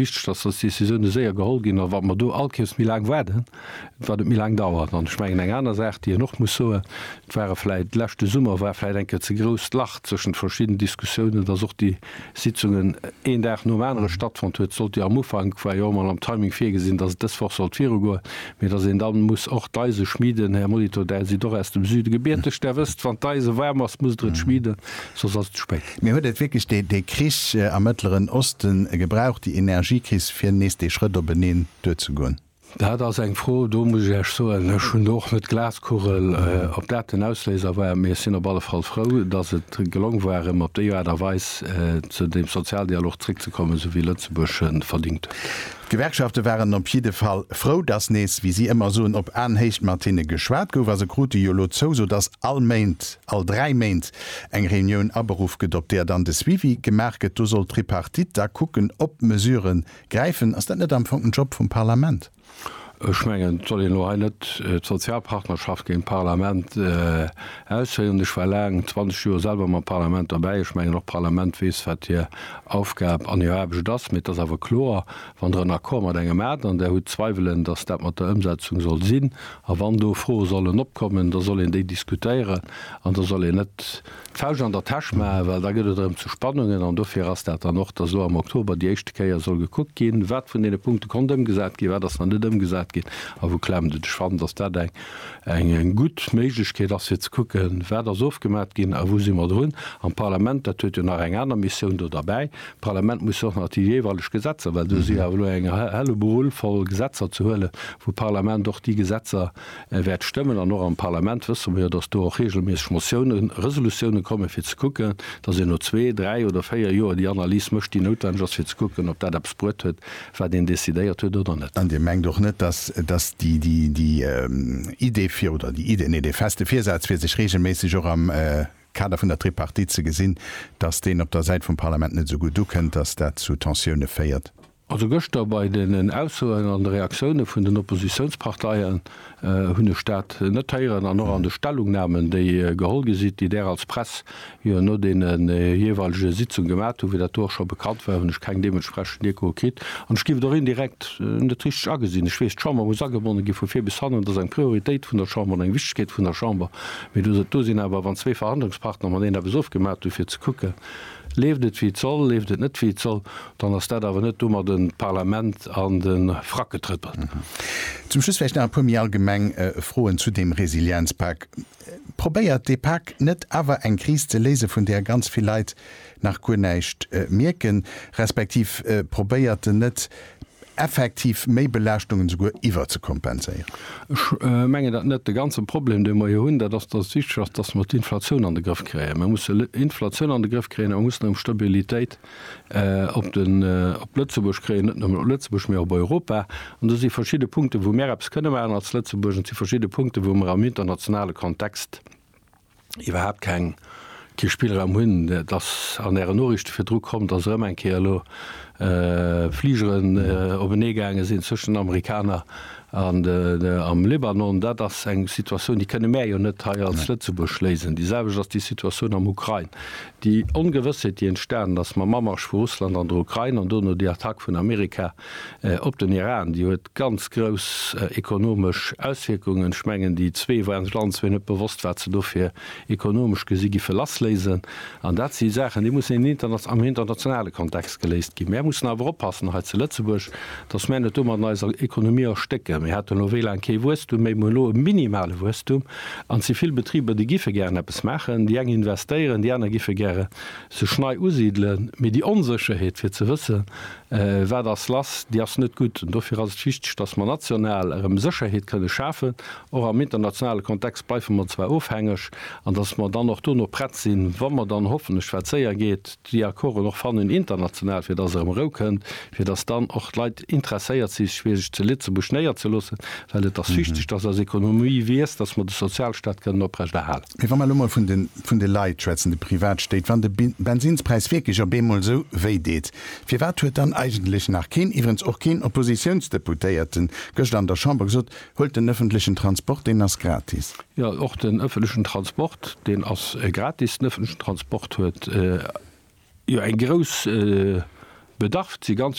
wichteg, dass dës Décisioune séier geholl ginn. A wa mer do all Kéiers méi laang waarden, wat et méi laang dauert. An ech mengen, eng aner Saach, déi een och muss soen, et ware vläicht, leschte Summer war vläicht eng Kéier ze grousst Lach zwëschent verschidden Diskussiounen, dass och déi Sitzungen een Dag nom anere stattfonnt huet. Et sollt jo am Ufank, war jo och emol am Timing virgesinn, dass et dës Woch sollt virugoen, mee dass een da muss och d'Eise schmieden. Här Molitor, Där sidd och aus dem Süde gebierteg, Där wësst, wann d'Eise waarm ass, musst Der et schmieden. soss ass et ze spéit. Mee huet et wierklech dee Krich am Mëttleren Oste gebraucht, déi Energiekris, fir nees dee Schrëtt op en Neen duerzegoen? Dat ass eng Fro, do muss ech Iech soen, ech hunn do och net d'Glaskugel, ob dat den Ausléiser war. Mee ech sinn op alle Fall frou, datt et gelong war, erëm op déi Aart a Weis zu deem Sozialdialog zréckzekommen, esou wéi Lëtzebuerg e verdingt huet. D'Gewerkschafte waren op jidde Fall frou, datt nees, wéi si ëmmer soen, op Aenhéicht mat hinne geschwat gouf. A se krute jo elo d'Zouso, datt all Méint all dräi Méint eng Reunioun aberuff gëtt, op där dann de Suivi gemaach gëtt. Do soll d'Tripartite da kucken, ob Mesurë gräifen. Ass dat net am Fong den Job vum Parlament? Ech mengen, et soll een elo hei net d'Sozialpartnerschaft géint d'Parlament ausféieren. Ech war laang, 20 Joer, selwer mam Parlament derbäi. Ech mengen, och d'Parlament weess, wat hir Aufgab an hir Aarbecht ass. Mee et ass awer kloer, wann Der en Accord mat engem hat an Der hutt Zweiwelen, dass dat mat der Ëmsetzung soll sinn, A wann do Froe sollen opkommen, da soll een déi diskutéieren an da soll een net d'Fauscht an der Täsch maachen, well da gëtt et erëm zu Spannungen. An dofir ass dat dann och, dass elo am Oktober déi éischte Kéier soll gekuckt ginn, wat vun deene Punkte konnt ëmgesat ginn, wat ass nach net ëmgesat ginn a wou klemmt et. Ech fannen, dass dat eng gutt Méiglechkeet ass, fir ze kucken, wat ass ofgemaat ginn a wou si mer drun. An d'Parlament, dat huet jo nach eng aner Missioun do derbäi, D'Parlament muss och nach déi jeeweileg Gesetzer, well do si jo awer elo eng Helleboel voll Gesetzer ze huelen, wou d'Parlament och déi Gesetzer wäert stëmmen. An och am Parlament wësse mer jo, datt do och reegelméisseg Motiounen, Resolutiounen kommen, fir ze kucken, datt een no zwee, dräi oder véier Joer déi Analys mécht, déi noutwenneg ass, fir ze kucken, ob dat eppes bruet huet, wat een decidéiert huet oder net. An Dir mengt och net, datt, datt déi, déi Idee fir, oder déi Idee, nee, dee feste Virsaz, fir sech reegelméisseg och am Kader vun der Tripartite ze gesinn, dass deen op der Säit vum Parlament net esou gutt ukënnt, dass dat zu Tensioune féiert. Also gëschter bei den Aussoen an de Reaktioune vun den Oppositiounsparteien hunn ech dat net héieren an och an de Stellungnamen, déi geholl gi sinn, déi Där als Press jo no deene jeeweilege Sitzunge gemat hutt, wéi dat do och scho bekannt war, hunn ech keng deementsprechend Echoe kritt. An ech géif et och indirekt net richteg agesinn. Ech weess, d'Chamber muss agebonne gi vu vir bis hannen, et ass eng Prioritéit vun der Chamber an eng Wichtegkeet vun der Chamber, Mee du sot, do sinn awer, wann zwee Verhandlungspartner mateneen eppes ofgemat hunn, fir ze kucken, leeft et wéi et soll, leeft et net wéi et soll, dann ass dat awer net domadden d'Parlament an de Frack getrëppelt. Zum Schluss vläicht nach e puer méi allgemeng Froen zu deem Resilienzpak. Probéiert dee Pak net awer eng Kris ze léise vun där ganz vill Leit nach guer näischt mierken, respektiv probéiert en net effektiv Méibelaaschtungen esouguer iwwerzekompenséieren? Ech mengen dat net. De ganze Problem, dee mer jo hunn, dat ass, datt et wichteg ass, datt mer d'Inflatioun an de Grëff kréien. Mer mussen d'Inflatioun an de Grëff kréien a mer mussen erëm Stabilitéit op Lëtzebuerg kréien, net nëmmen op Lëtzebuerg, mee op Europa. An do si verschidde Punkten, wou mer eppes kënne maachen als Lëtzebuerg, an et si verschidde Punkten, wou mer am internationale Kontext iwwerhaapt keng, kee Spillraum hunn. Et ass an Ären Noriichte virdru komm, datt erëm eng Kéier elo Fligeren openee gaange sinn zwëschen den Amerikaner an am Libanon. Dat ass eng Situatioun, déi kënne mär jo net hei als Lëtzebuerg léisen. Déi selwecht ass déi Situatioun am Ukrain. Déi Ongewëssheet, déi entstanen ass mam Amarsch vu Russland an der Ukrain an dono déi Attack vun Amerika, op den Iran, déi huet ganz grouss ekonomesch Auswierkungen. Ech mengen, déi zwee waren sech allen zwee net bewosst, wat se dofir ekonomesch gesi giffe lassléisen. An dat si Saachen, déi mussen in inter am internationale Kontext geléist ginn. Mär mussen awer oppassen hei zu Lëtzebuerg, datt mär net domat eiser Ekonomie erstécken. Mir haten elo wéi laang kee Wuesstum méi, mir hunn elo e minimale Wuesstum an si vill Betriber, déi giffe gären eppes maachen. Déi eng investéieren, déi aner giffe gäre sech nei usidelen. Mee déi Onsécherheet, fir ze wëssen, Wat ass lass? Déi ass net gutt. An dofir ass et wichteg, datt mer national erëm Sécherheet kënne schafen. Och am internationale Kontext bleife mer zwar ofhängeg. An datt mer dann och dono prett sinn, wa mer dann hoffentlech, wat séier geet, déi Accorden och fannen international, fir datt erëm Rou kënnt, fir datt dann och d'Leit interesséiert si sech fir sech zu Lëtzebuerg néierzeloossen. Well et ass wichteg, datt eis Ekonomie wiesst, datt mer de Sozialstaat kënnen oprechterhalen. Mee wa mer elo mol vun de Leit schwätzen, de Privatstéit, wann de Bensinspräis wierklech op eemol esou wéi deet, firwat huet dann eigentlech nach keen, iwwerens och keen Oppositiounsdeputéierte gëschter an der Chamber gesot, Huelt den ëffentlechen Transport, deen ass gratis. Jo, och den ëffentlechen Transport, deen ass gratis. Den ëffentlechen Transport huet jo eng grouss Bedarf. Et si ganz.